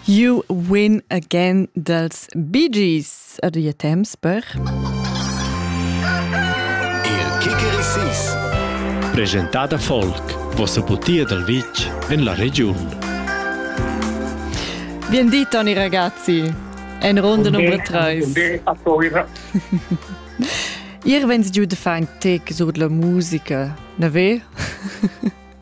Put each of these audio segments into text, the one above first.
You win again dals Bee Gees. Adia temps per... Il Kickerissis. Presentada folk. Vossa butia dal vitg en la regiun. Bien di, Toni ragazzi. En ronda nummer 3. Ihr wenns giù de fang tec sud la musica, na ve?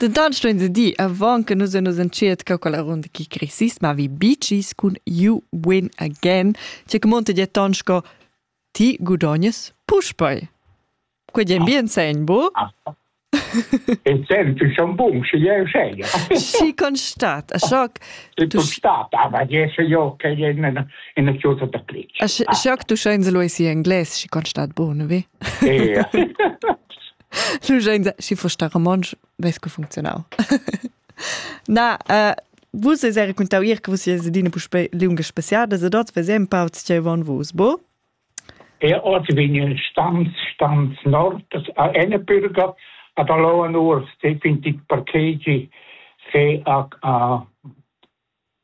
Dentant stuein se dir, avant che nus nus entschiertga quella runda chi cresist, ma vi bicis cun You Win Again, tge che monta di ton sco ti gudognes puspei. Quei è bien segn, bu? In senn tu schon bun, sche jeu seglia. Schi constat, a schoc. Tu constat, aber jesse jo che in in chiusa da plic. A schoc tu schein se lo esi englais, schi constat bun, vi? Ja. Schi fo sta romontsch ves co funzionau. Na, äh, vus es era contau ir che vus sies adina puspe lunga spaziada, se dort vesem pauts che von vus, bo? Er ort vin il stans stans nord a ene bürger ad alloa nuors definitiv parkegi se a a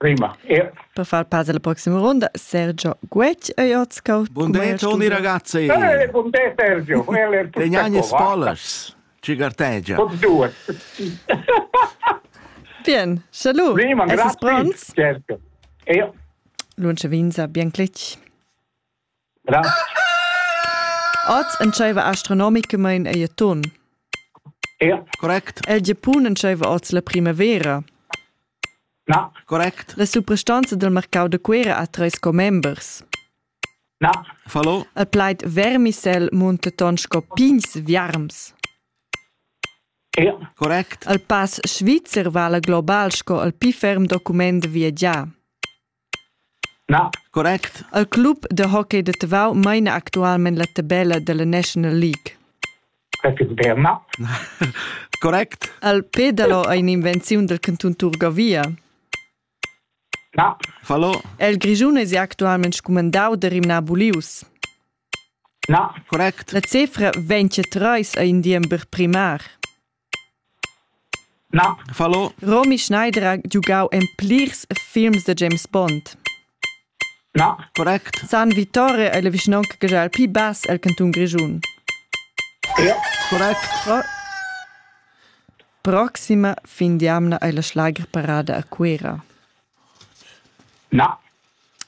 Prima. Yeah. Per far pass alla prossima ronda, Sergio Guec ei oz cau. Bun de Toni ragazzi. Eh, bun de Sergio. Tegnagne spolas. Ci gartegia. Con due. Bien, salut. Prima, grazie. Certo. E io. Lunce Vinza, bien clic. Oz entscheiva astronomicamain ei a ton. Correct. El Giapun entscheiva oz la primavera. Na. Correct. La suprastanza del marcau da Cuera ha treis commembers. Na. Fallo. El plaid vermisel munta ton sco pigns viarms. Ja. Correct. El pass svizzer vala global sco el pli ferm document viagià. Correct. El club da hockey da Tavau maina actualmein la tabella dalla National League. Correct. El pedalo ei in'invenziun dal cantun Turgavia. Fallo. El Grischun es actualmein scumandau da rimnar bulius. Correct. La cefra vegn trais ei in diember primar. Romy Schneider ha giugau en plirs films da James Bond. San Vittore ei la vischnaunca che ha il pli bass el cantun Grischun. Proxima fin d'jamna ei la Schlagerparade a Cuera.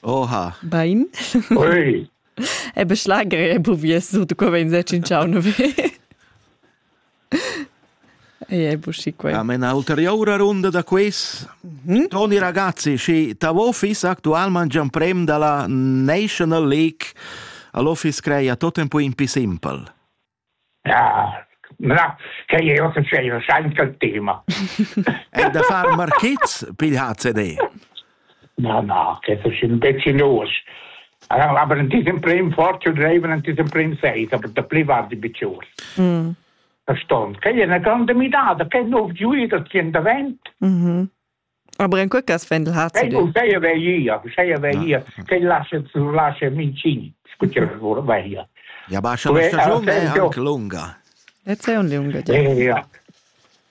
Oha. Bein? Ui. Ebe Schlager e buvies, du co vein se cinciau nove. Ei ei buschi quei. A mena ulterioura runda da quiz. Mm? Toni ragazzi, schi ta office actualman gian prem dalla National League all'office creia tot tempo in più simple. Ja, na, che io che sei, sai che tema. È da far marchizz, pigl HCD. Na, na, che das sind pecchinus. Aber in diesem Prim fortune dreiven in diesem Prim seis, aber da pli war die Biciur. Mm. Verstand. Che è una grande mirada, che nuovo giuido ti in davent. Mhm. Aber in quel cas Fendel hat sie. Sei, sei ja via, sei ja via, che lascia, lascia mincini, scuccia via. Ja, aber schon eine Station wäre anche lunga. Jetzt è un lunga. Ja, ja.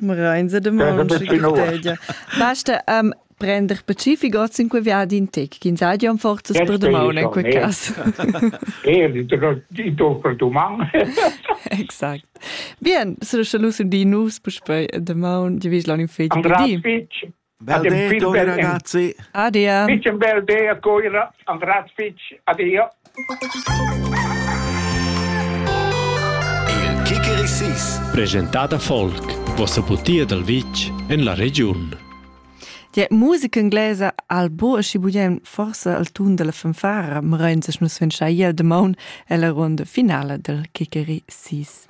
Reinze de Monchi Basta um, prender pacific oz in quei viadi in tec, ch'in sadia un forzas per domaun in quei cas. Eh, di to per domaun. Exakt. Bien, so sche lus un di nus puspei de maun, di vis lan in fetg. Andrea Fitch. Ade, Tore ragazzi. Adia. Fitch un bel day a coira, Andras Fitch. Adia. Il Kikerisis. Presentata folk. Vossa putia dal vitg en la regiun. Die musica inglese al bo și budem forse al tun della fanfara, ma rein ses nus fin schaiel de maun e la ronda finale del Kikeri 6.